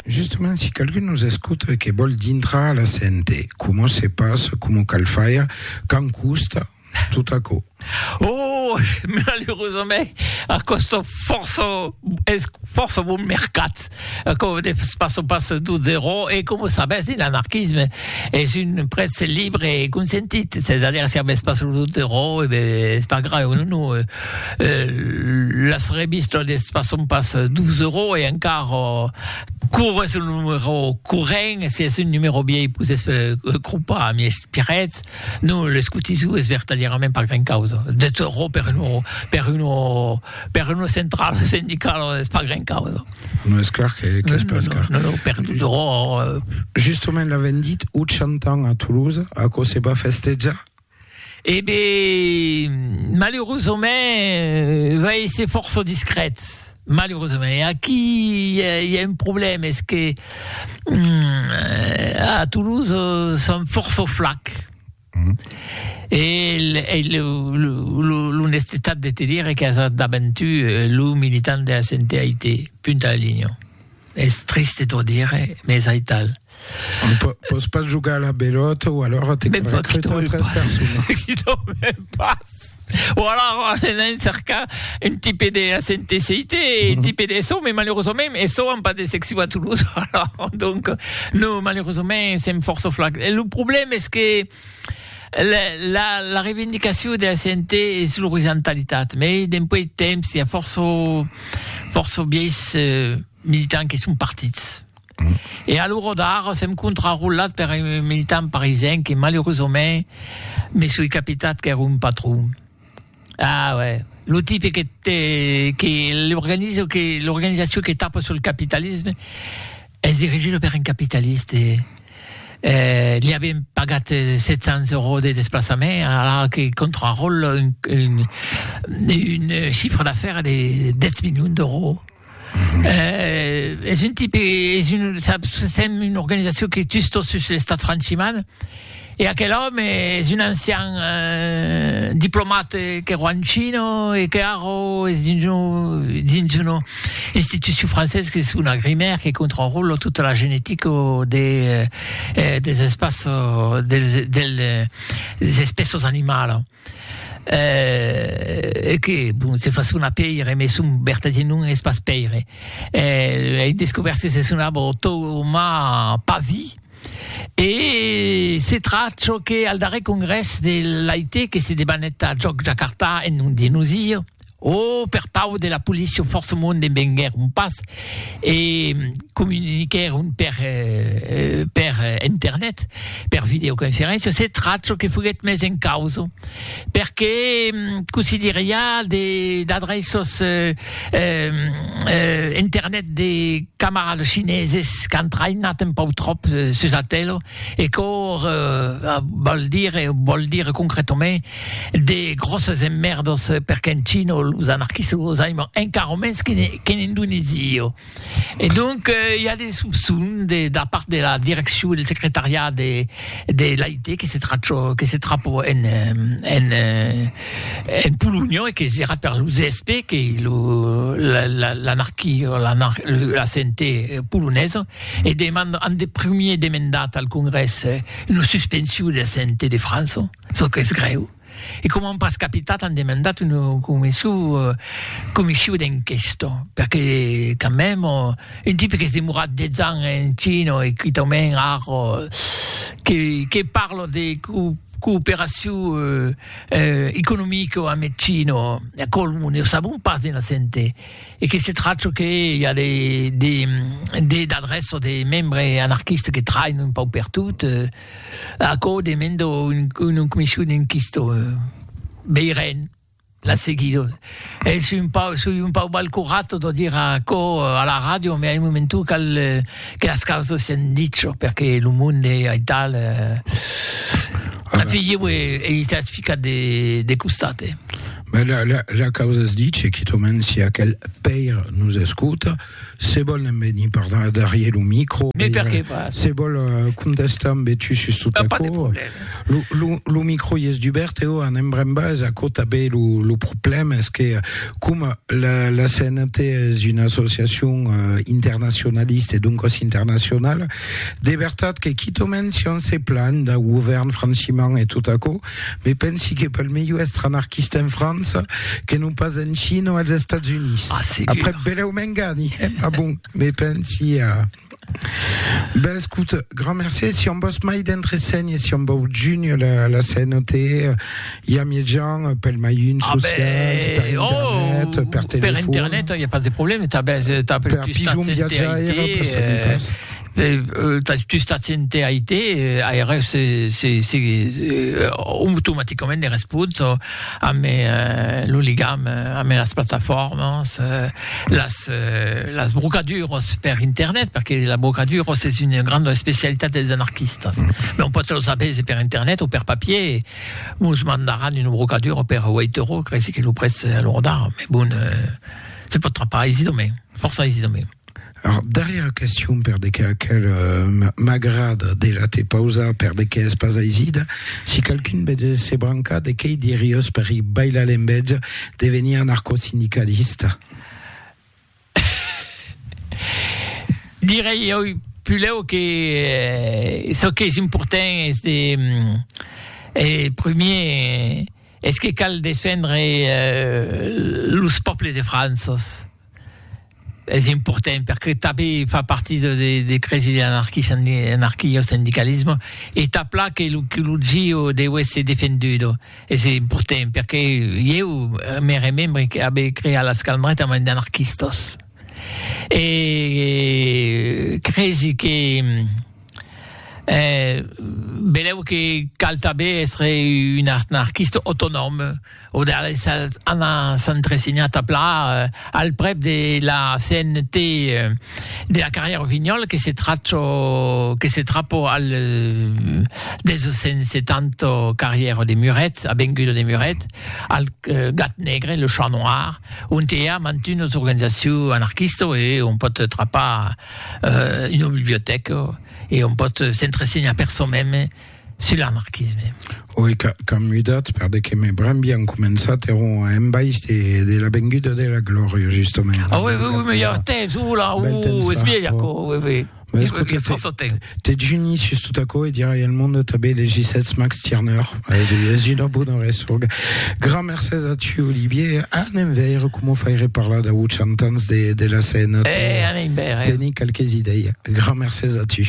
Justement si qualqu'un nos escota e que vòl dintrar a la CNT, coma se passa, coma cal faire, quand costa, tot aquò? Oh! Malerosament, a còsta fòrça, es fòrça bon mercat. Aquò de pas au pas du zero e coma sabètz un anarquisme es un prètz libre e consentit, c'est a dire si avètz pas lo du zero e ben es pas grave non non euh euh las revistas de pas au pas du zero e encara cor es lo numero corrent e si es un numero vièlh pus es cropa ami es piretz non l'escotisou es vertadièrament pas gran causa de zero per un per un Per una centrala sindicala es pas gran causa. Non es clar que, que es pas car. Non, non, per toujours... Justement, l'avem dit, 80 ans a Toulouse, aquò se va festejar? Eh ben, malheureusament, va èsser fòrça discret, malheureusament. E aquí i a, i a un problèma, es que a Toulouse son fòrça flacs. Mm. E, e l'onestetat de te dire que as daventu eh, lo militant de la CNTAIT, punta la linha. Es triste t'ho dire, mais es aital. Po pos pas jugar a la belota ou alors te ben, recruter tres personas. Qui t'ho pas. Bon, alors, anem cercar un tipe de SNTCIT, un tipe de SO, mais malheureusement, SO n'ont pas de secció a Toulouse. Alors, donc, nous, malheureusement, c'est force flac. Et le problème, est que la, la, la revendicació de la CNT és l'horizontalitat, mais d'un peu de temps, hi ha força, força vies eh, militants que són partits. E a l'ora d'ara sèm contrarolat per un militant parisien que malerosament me soi capitat qu'ère un patron. Ah uè, lo tipe que te que l'organizo que l'organizacion que tapa sul capitalisme es dirigida per un capitaliste. Eh li avien pagat 700 euros de desplaçament ara que contraròla un un un chiffre d'affaires de 10 milions d'euros. Eh, es un tipe, es un, saps, sèm una organizacion que tus tot sus l'estat franchiman, e aquel òme es un ancian eh, diplomat que ro en China e que ara es dins un, dins una institucion francés qu'es una grimèr que controròla tota la genetica de, eh, des espaços, dels, del, des espèços animalas. Eh, e que, bon, se fa sonar pèire, mès son vertadier nom es pas Pèire. Eh, ei descobèrt que se sonava Toma Pavi. E se tracha çò que al darrèr congrès de l'AIT que se debanèt a Jòc Jakarta en nom de nosir, O per pau de la policia o fòrça monde venguèron pas e comuniquèron per per internet, per videoconferéncia, se tracho que foguèt mes en causa, perque cossí dire i a de d'adreços internet de camarades chineses qu'an traïnat un pau tròp sus Atelo e quò vòl dire vòl dire concretament De gròsses emmèrdos perque en China los anarquistes los aiman encara mens qu'en Indonèsia. E donc i a de sopçons de da part de la direccion del secretariat de de l'AIT que se trachò que se trapò en en en Polonha e que serà per lo ZSP que lo la la l'anarquia la la CNT polonesa e deman an de primièr demandat al Congrès una suspension de la CNT de França. Çò qu'es grèu, e coma an pas capitat an demandat una comission d'enquesta, perque quand même un tipe qu'es demorat 10 ans en China e quitament ar que parle de cooperacion economica amb eth China, aquò ne o sabon pas de naissente, e que se tracha que i a des adrèças de membres anarquistes que trainon un pauc pertot. Aquò demendo un comission enquistò veiren la seguido es un pau soi un pau mal curato de dire aquò a la radio me ai momentu cal que las causas sian dicho perque lo monde ai tal ficat de costat eh. Ma la la la causa es diche quitament si aquel pair nos escota. Se vòl en venir per darrier lo micro. Mais perqué pas? Se vòl contestar ambe tu sus tot aquò. Pas de problème. Lo, lo, lo micro i es dubèrt, eo anem brembas, aquò tanben lo, lo problème es que coma la, la CNT es una associacion internacionalista e doncas internacionala, de vertat que quitomènt si on se planh dau govèrn franchimant e tot aquò, Me pensi que pel melhor èstre anarquista en França que non pas en China o als Estats Units. Ah, segur. Après, belèu m'engani, eh? Ma bon, me pensi a... Ben, escut, grand mercé. Si on vos mai d'entre seny e si on vau juny la, la CNOT, i a mietjan pel mai un Ah, socials, ben, per oh, internet, per telefon. Per internet, il n'y a pas de problème. T'as, ben, t'as per, per pijon viatjaire, per saber pas. tu stats ente IT, aireu se, se, se euh, automaticament de respons amb euh, lo ligam euh, amb las plataformas, euh, las, euh, las brocaduros per internet, perquè la brocaduros és una grande especialitat dels anarquistas. Mm. Mais on pot los apese per internet o per papier, mos mandaran un brocaduro per 8 euros, crec que lo près a l'ordar, mais bon, euh, se pot trapar aisidament, força aisidament. Ath darrièr question per de qué aquel m'agrad de la te pausar per de qué es pas aisida si qualqu'un betz se brancar de quei diriós per i bailar en betz de venir anarcosindicalista. Direi oi pulèu que çò qu'es important es de e premier es que cal defendre los pòples de França. es important perque tanben fa partit de de de cresi de l'anarquis anarquia o sindicalisme e tà pla que lo que lo gio deu èsser defendudo es important perque ieu me remembre que abe creat las calmrèt amb un d'anarquistas e cresi que Eh, benlèu que cal tanben èstre un anarquista autonòm, o de les anar s'entresenhar tà plan al prèp de la CNT de la carrièra Rossignol que se tracho, que se trapo al 270 carrièra de Muret, avenguda de Muret, al Gat Negre, le Chat Noir, ont i a mantunas organizacions anarquistas e on pòt trapar. euh, una bibliotèca e on pòt s'entresenhar per çò meme sul anarquisme. Oui, qu'an mudat, per de que me bram bien començat, eron a embaix de, de la venguda de la glòria, justament. Ah oui, oui, oui, mais il y a temps, oula, ouh, es vieille, oui, oui. Mais écoutez, Dejuni sus tot aquò e dirai al monde tanben les gissets Max Tirneur. Es una bona ressorga. Gran mercés a tu, Olivier. Anem veire coma faire parlar dau 80 ans de, de la Sena. Eh, anem veire. Teni qualques idei. Gran mercés a tu.